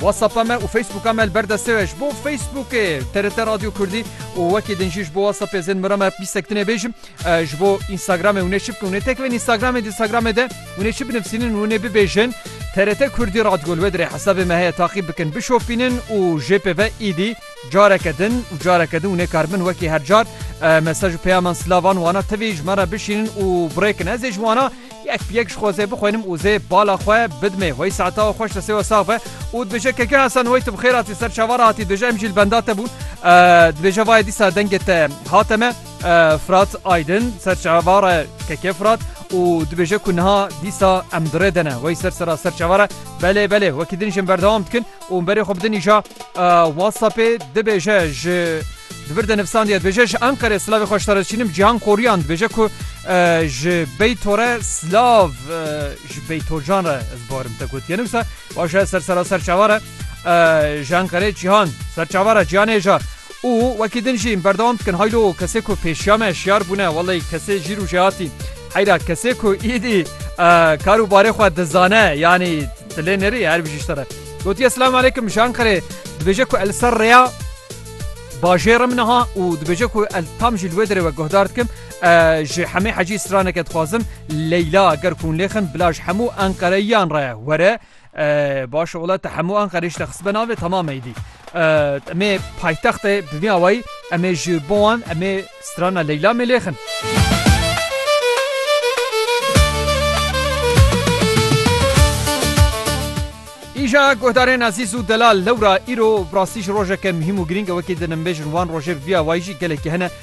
WhatsApp me û Facebooka me li ber destê we ji bo Facebookê TRT Radyo Kurdî û wekî din jî ji bo WhatsAppê zên mira me pîsek tinê bêjim ji bo Instagramê hûnê çi bikin hûnê tekivin Instagramê Instagramê de hûnê çi binivsînin hûnê bibêjin TRT Kurdî Radgol we dirê hesabê me heye taqîb bikin bişopînin û jê pê ve îdî careke din û careke din hûnê kar bin wekî her car mesaj û peyaman silavan wana tivî ji me re bişînin û birêkin ez ê ji wana Yek bi yek ji xwezê bixwînim û zê bala xwe bidimê. Wey saeta xweş te sêwa sax be û dibêje keke Hesen wey tu bi xêr hatî ser çavar hatî dibêje em jî li benda te bûn dibêje vayê dîsa dengê te hate me Fırat Aydin ser çavare keke Fırat û dibêje ku niha dîsa em dirê dene wey ser sera ser çavare belê belê wekî din jin berdewam dikin û berê xwe bidinîja WhatsAppê dibêje ji di vir de nivsandiye dibêje ji Enqerê silavê xwe ji te re diçînim Cîhan Koryan dibêje ku ji Beyto re silav ji Beytocan re ez barim te gotiye ne wisa baş e ser sera ser çavare ji Enqerê Cîhan ser çavare Cîhanê ja Û wekî din jî berdewam dikin haylo kesê ku pêşiya me şiyar bûne wellay kesê jî rûjê hatî heyra kesê ku îdî kar û barê xwe dizane yanî dilê nêrî her bijî ji te re gotiye Silam aleykum ji Enqerê dibêje ku li ser rêya bajêr im niha û dibêje ku li tam jî li wê derê we guhdar dikim ji hemê hecî straneke dixwazim Leyla ger ku hûn lêxin bila ji hemû Enqereyiyan re were Baş ola te hemû Anqerê jî te xistbe navê temam eydî. Emê paytext e bi vî awayî emê ji bo wan emê strana Leyla mêlêxin. Îja guhdarên ezîz û delal lewra îro rastî ji rojeke muhîm û girîng e wekî dinimbêjin wan rojê bi vî awayî jî gelekî hene.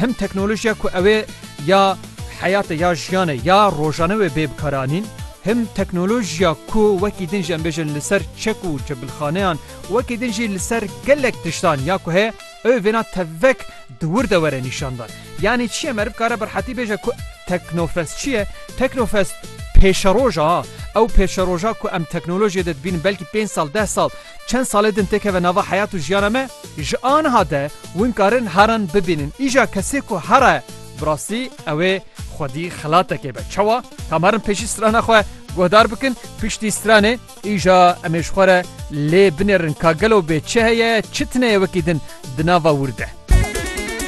Him teknolojiya ku ew ê ya heyatê ya jiyanê ya rojane wê bê bikaranîn, him teknolojiya ku wekî din jî em bêjin li ser çek û çebilxaneyan, wekî din jî li ser gelek tiştan ya ku heye ew ê vêna tevek di wir de were nîşandan. Yanî çi ye? Meriv kare bi rehetî bêje ku Teknofest çi ye? Teknofest pêşeroja ha. Ew pêşeroja ku em teknolojiyê de dibînin belkî pênc sal, deh sal, çend salê din têkeve nava heyat û jiyana me, ji aniha de Win karin heran bibînin. Îja kesê ku hera ye bi rastî ew ê xwedî xelatekê be. Çawa? Tam herin pêşî strana xwe guhdar bikin, piştî stranê îja em ê ji xwe re lê binêrin ka gelo bê çi heye, çi tine ye wekî din di nava wir de.